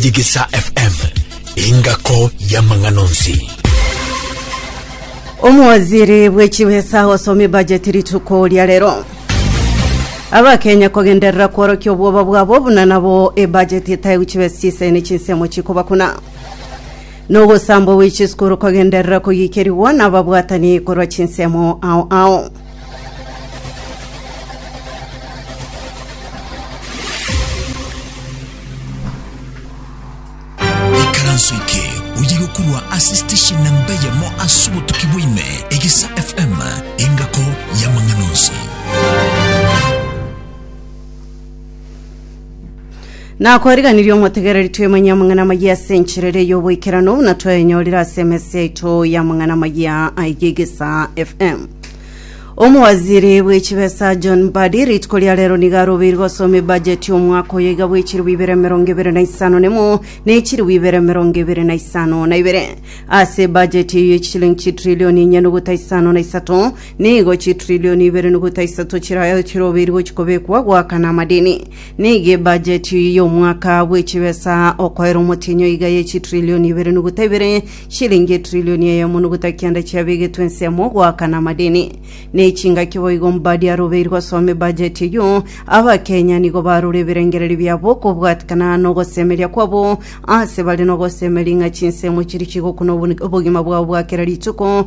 Digisa FM, engako y'amang'ana onsi. Omowaziri bw'echibesa osomia bajeti rituko ria rero. Abakenya kogenderera kworokia obwoba bwabo buna nabo ebajeti etaigu chibesa chisene chinsemo chikobakuna. Nogosambwa gwe chisukuru kogenderera kogikerigwa nababwatani korwa chinsemo ao ao. Ikaranso eke oyige korwa ase station namba eyemo ase obotuki bwaime egesa fm engako y'amang'ana onsi nakoriganirie omotegereri twemenye amang'ana amayia ase enchera ere y'oboikerano buna twayenyorire ase emesi yaito y'amang'ana amayia aiga egesa fm omowaziri bw'echibesa john mbadi rituko ria rero niga arobeiri gosoma ebajeti y'omwaka oyo iga bw'echiribu ibere emerongo ebere na isano nemo na echiribu ibere emerongo ebere na isano na ibere ase ebajeti eyo y'echishilingi chitrilioni enye nogota isano na isato Nigo chitrillioni ibere nogota isato chirayo chirobiri gochia kobekwa goakana amadini. Nigo ebajeti y'omwaka bw'echibesa okoera omotienyo iga ye chitrillioni ibere nogota ibere, shilingi etrillioni eyemo nogota kenda chiabegetwe ensemo goakana amadini. Nechingaki boigo mbadi arobeiri gosoma ebajeti eyio, Abakenya nigo barora ebirengererio biabo okobwatikana nogosemeria kwabo ase bare nogosemeria ng'a chinsemo chiri chigokuna obogima bwabo bwa kera rituko,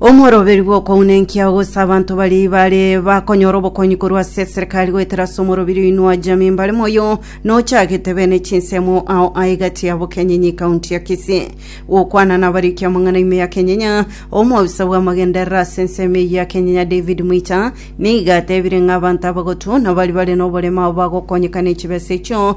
Omoroberi bw'okounenkia gose abanto baria bare bakonyora obokonyi korwa ase eserikari goetera ase omorobiri oino wa jamii mbare moyo nochagete bene chinsemo ao aegati ya Bokenyenyi kaunti ya Kisii. Gokwana nabariki amang'ana ime ya Kenyenya, omobisa bw'amagenderera ase ensemo eyio ya Kenyenya David Mwita nigo atebire ng'a abanto abagotu nabari bare noborema ao bagokonyeka nechibesa echio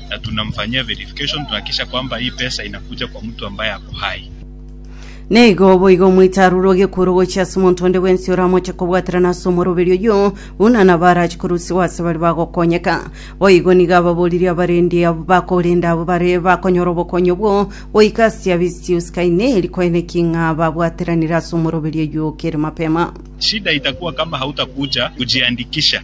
na tunamfanyia verification tunahakikisha kwamba hii pesa inakuja kwa mtu ambaye ako hai. Neigo boigo omoite aruroge ekuru gochia ase omonto onde bwensi oramoche kobwaterana ase omoroberi oyio, buna nabo arache korusiwa ase baria bagokonyeka. Boigo nigo ababoririe abarendi abo bakorenda abo bare bakonyora obokonyi obwo goika ase chia Vistius Kaineri kwene ki ng'a babwateranire ase omoroberi oyio kere mapema. Shida itakuwa kama hautakuja kujiandikisha.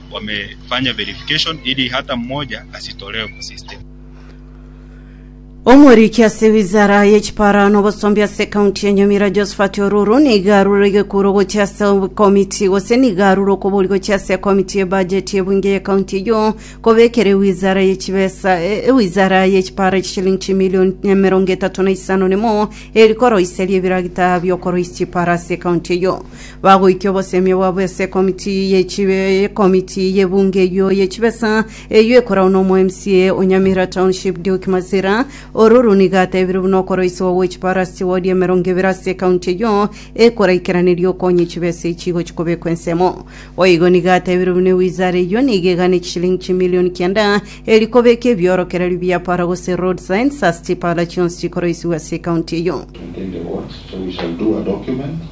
Omoriki ase wizara y'echipaara na obosombi ase ekaunti ya Nyamira Josphat Oruru nigo arure egekuro gochia ase ekomiti gose nigo arure okobori gochia ase ekomiti y'ebajeti y'ebunge y'ekaunti eyio kobekera ewizara y'echibesa ewizara y'echipaara chishilingi chimilioni emerongo etato na isano nemo eri koroisia riebirakita bi'okoroisia chipaara ase ekaunti eyio. bagoikia obosemia bwabo ase ekomiti ye chibe ekomiti ye bunge eyio ye chibesa eyio ekoragwa na omo MCA o Nyamira Township Duke Masira ororo nigo atebire buna okoroisiwa gwe chiparasi chiwodi emerongo ebere ase ekaunti eyio ekoraikeraneria okonye chibesa echi igochi kobekwa ensemo boigo nigo atebire buna ewizara eyio nigo egane chishilingi chimilioni kianda eri kobeka ebiorokererio bia para gose road signs ase chipara chionsi chikoroisiwa ase ekaunti eyio Within the words, so we shall do a document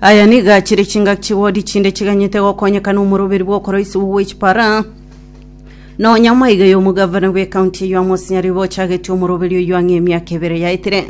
Aya nigo achire chingaki chigodi chinde chiganyete gokonyeka n'omoroberi bw'okoroisiwa gwe chipara. Nonya maiga y'omogavana bw'ekaunti eyio amo osinyariri bochagetie omoroberi oyio ang'e emiaka ebere yaetire.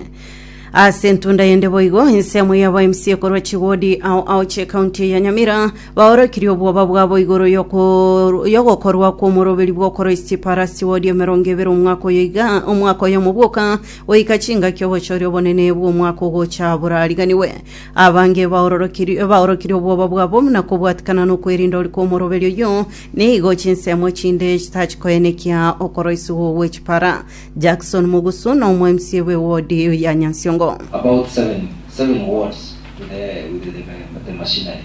Ase entunda yende boigo, ensemo ya ba MCA korwa chigodi ao ao chi'ekaunti ya Nyamira baorokirie obwoba bwabo igoro yoko- yogokorwa kw'omoroberi bw'okoroisia chipara ase chigodi emerongo ebere omwaka oyo iga omwaka oyomo bwoka Goika chingaki obochori obonene bw'omwaka ogocha borariganigwe, abange baororokiri- baorokirie obwoba bwabo buna kobwatikana nokwerinda ore kw'omoroberi oyio, nigo chinsemo chinde chitachikoenekia okoroisigwa gwe chipara. Jackson Mugusu n'Omoemsie bwe wodi ya Nyansiongo. About seven seven wards with the with the machinery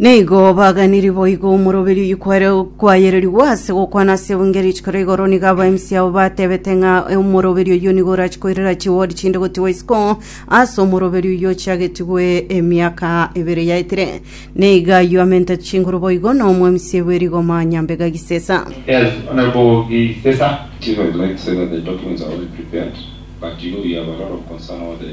Nigo baganiri boigo omoroberi oyikware kwayererigwa ase gokwana ase ebunge rituko ria igoro nigo aba MC abo batebete ng'a omoroberi oyio nigo orachi koirera chiwodi chinde gotigwa isiko ase omoroberi oyio ochiagetigwe emiaka ebere yaetire. Nigo ayio amentete chinguru boigo na omo MC bwe rigoma nyambega gisesa. Yes, Honourable Gisesa. Chief, I would like to say that the documents are already prepared, but you know we have a lot of concern over the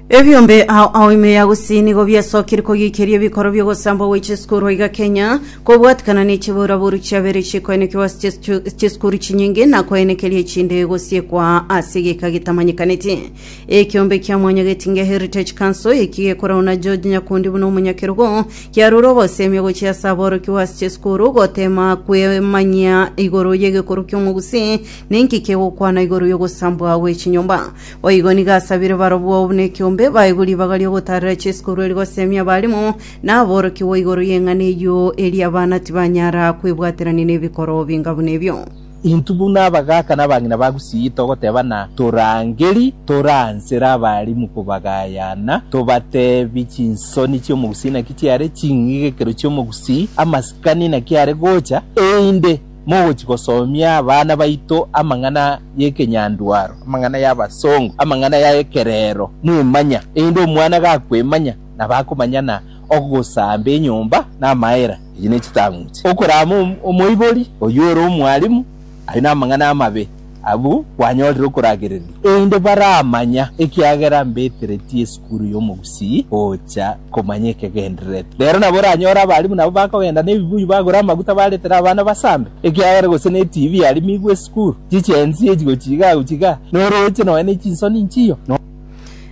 Ebiombe ao ao ime ya gusii nigo biasokire kogiikeria ebikoro bi'ogosambwa gwe chisukuru iga Kenya, kobwatikana ne chiboraboru chiabere chikoenekigwa ase chisichu- chisukuru chinyinge na koenekeria echinde gosiekwa ase egeka getamanyekaneti. Ekiombe kia Mwanya Getinge Heritage Council, eki gekorwa na George Nyakundi buna omonyakerogo, kiarure ogosemia gochia ase aborokigwa ase chisukuru gotema kwemanyia igoro y'egekorwa ki'Omogusii na inki kegokwana igoro y'ogosambwa gwe chinyomba. Boigo nigo asabire barabwo oo buna ekiombe baegwe ribaga ri'ogotaarera Jesu korwa ere goseemia abarimo na aborokigwa igoro y'eng'ana eyio, erio abana tibanyara kwebwaterania nebikoro binga buna ebio. Intwe buna abagaaka na abang'ina ba Gusii togoteebana toraangeri tore aa nsera abaalimu kobagayana, tobateebie chinsoni chi'Omogusii naki chiare, ching'igekero chi'Omogusii, amasikani naki are gocha, einde, mogochia gosomia abana baito amang'ana y'ekenyandwaro, amang'ana y'abasongo, amang'ana ya ekerero, mwemanya, erinde omwana gakwemanya, nabo akomanya na ogosamba enyomba na amaera. Echi ne chitang'uche. Okorama omoibori, oyio ore omwalimu, aye namang'ana amabe. Abwo kwanyorire okoragereria, erinde baramanya, ekiagera mbeteretie esukuru y'omogusii gocha komanya ekegendererete. Rero nabo oranyore abalimu nabo bakogenda nebibuyu bagure amaguta baretere abana basambe, ekiagera gose netibi yarimigwe esukuru, chichensi echi gochiga gochiga, norooche nonya nechinsoni nchiyo.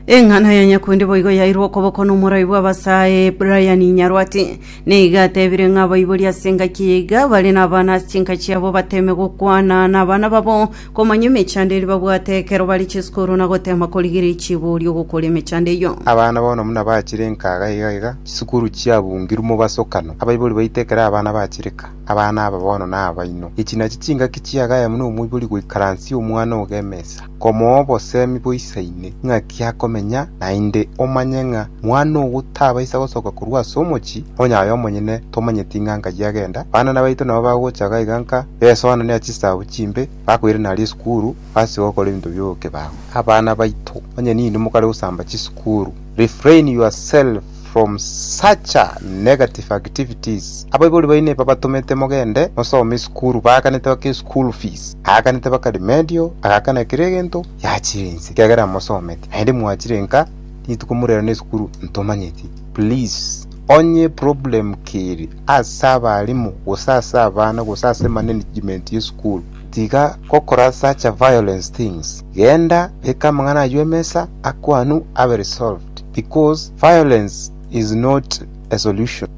Eng'ana ya nyakundi boigo yairwe okoboko nomoraai bw'abasae Brian Nyarwati. Nigo atebire ng'a abaibori ase engaki eye iga bare nabana ase chinka chiabo bateme gokwana nabana babo komanya emechando eria babwate ekero bare chisukuru na gotema korigereria chiborio gokora emechando eyio. Abana bono buna bachire enkaga iga iga chisukuru chiabungirwe mobasokano, abaibori baito ekero abana bachireka, abana aba bono nabaino. Echi nachi chingaki chiagaye buna omoibori goikaransia omwana ogo emesa. Komoa obosemi boisa ime, ng'aki akomenya naende, omanye ng'a mwana ogo tabaisa gosoka korwa ase omochie, onye aye omonyene tomanyeti ng'a nkai agenda. Banana baito nabo bagocha iga iga nka, besoanania chisaabo chimbe, bakoirana aria esukuru, base gokora ebinto bi'obokebago. Abana baito, onye ninde mokare gosamba chisukuru, refrain yourself. from such a negative activities abaibori baino ebabatomete mogende mosome esukuru baakanete baka eschool fees aakanete baka remedial agakana ekero egento yachire inse ekiagera amosomete naende mwachire nka rituko murera na esukuru ntomanyeti please onye problem keri ase abarimu gose ase abana gose ase management y'esukuru Tiga gokorasacha violence things, genda beka amang'ana ayio emesa akwanu abe resolved because violence is not a solution.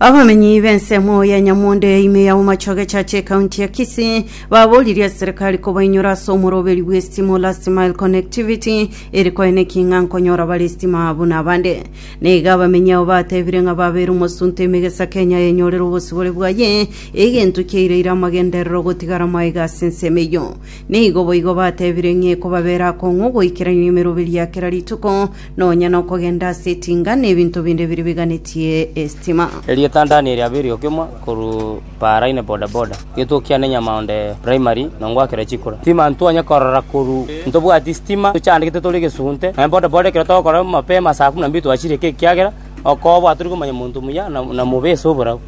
Abamenyi b'ensemo ya Nyamonde ya ime ya Bomachoge Church ekaunti ya Kisii baboririe ase serikali kobainyora ase omoroberi bw'estima o Last Mile Connectivity ere koe neki ng'a nkonyora bare estima buna abande. Na iga abamenyi abo batebire ng'a babeire omosunte ime gesa Kenya yenyorere obosibore bwaye Egento kiaireire amagenderero gotigara maega ase ensemo eyio. Nigo boigo batebire ng'a ekobabera akong'u goikerania emeroberio ya kera rituko, nonya nokogenda ase etinga, na ebinto binde biria biganetie esitima. Erieta ndani eria beri okimwa korwa paraine boda boda gituo kiane nyamaonde primary nongwakera chikura sitima ntwanye korora koru ntobwati sitima tochandegete tore gesunte naye boda boda ekero togokora mapema saa kumi na mbili twachire ekiagera okobwa tori komanya monto muya na mobe ase oborabu.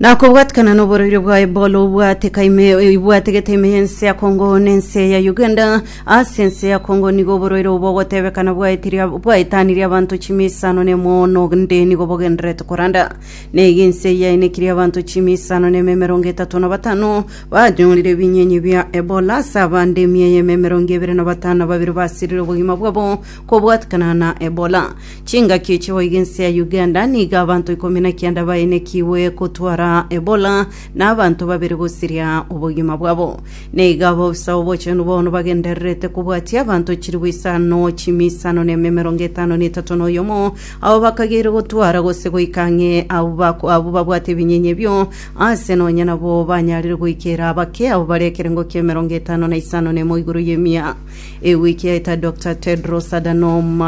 Na kobwatikana noboroiro bwaye bore obwate ka ime oibwate gete ime y'ense ya Kongo na ense ya Uganda. Ase ense ya Kongo nigo oboroiro obo ogotebekana bwaetirie bwaetanirie abanto chimia isano na emoono onde nigo bogendererete koranda. Na iga ense eye yaenekirie abanto chimia isano na ime emerongo etato na batano banyorire ebinyenye bia Ebola, ase abande emia eyemo emerongo ebere na batano na babere basirire obogima bwabo kobwatikana na Ebola. Chingaki echi boigo ense ya Uganda nigo abanto ikomi na kianda baenekigwe gotwara Ebola na abanto babere gosiria obogima bwabo. Nigo abaofisa obochenu bono bagendererete kobwatia abanto chilifu isano chime isano na ime emerongo etano na etato na oyomo abo bakageire gotwara gose goika ang'e abwo bako- abwo babwate ebinyenye ebio aase nonye nabo banyarire goikera bake abo bare ekerengo kia emerongo etano na isano na emo igoro y'emia. Ewiki yaita Doctor Tedros Adhanom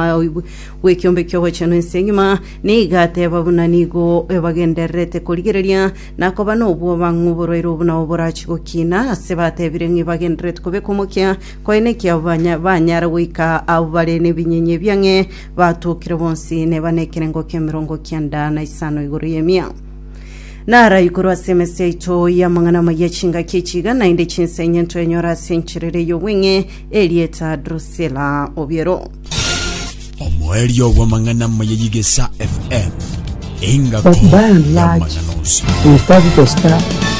bw'ekiombe ki'ogochenu ense engima nigo ateba buna nigo ebagendererete korigereria na koba nobwoba ng'oborwaire obo nao borachie gokina ase batebire ng'a ebagendererete kobeka omokia koyene ekiabo banyara goika abwo bare nebinyinyi ebiang'e batokire bonsi neba nekerengo k'emerongo kenda na isano igoro y'emia. Narayi korwa ase emese yaito y'amang'ana amaya chingaki echiga, naende chinsa enye ntwenyora ase encherera ey'obweng'e erieta Drusila obiero. Omoerio bw'amang'ana amaya y'Igesa FM. Engaki But by and large, y'amang'ana onsi. we started to start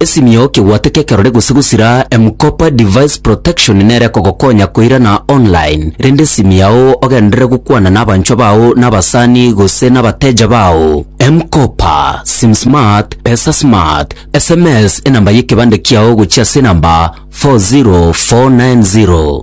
Esimio kegwate kekerore gose gosira M-Kopa Device Protection nere ekogokonya koirana online, rende esimi yao ogenderere gokwana nabanchwa bao nabasani gose nabateja bao. M-Kopa, SimSmart, PesaSmart, sms enamba yekebande kiao gochia ase enamba 40490.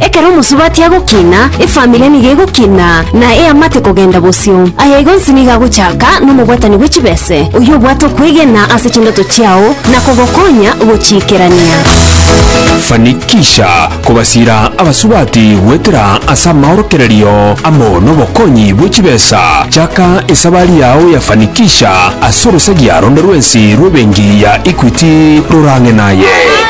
Ekero omosubati agokina, efamiri nigo egokina, na eamate kogenda bosio. Aya igo onsi nigo agochaka nomobwatani bwe chibese, oyio obwate okwegena ase chindoto chiao na kogokonya gochiikerania. Fanikisha kobasiira abasubati goetera ase amaorokererio amo nobokonyi bwe chibesa. Chaka esabari yao ya Fanikisha ase orosagia ronde rwensi rw'ebenki ya Equity rorang'e naye.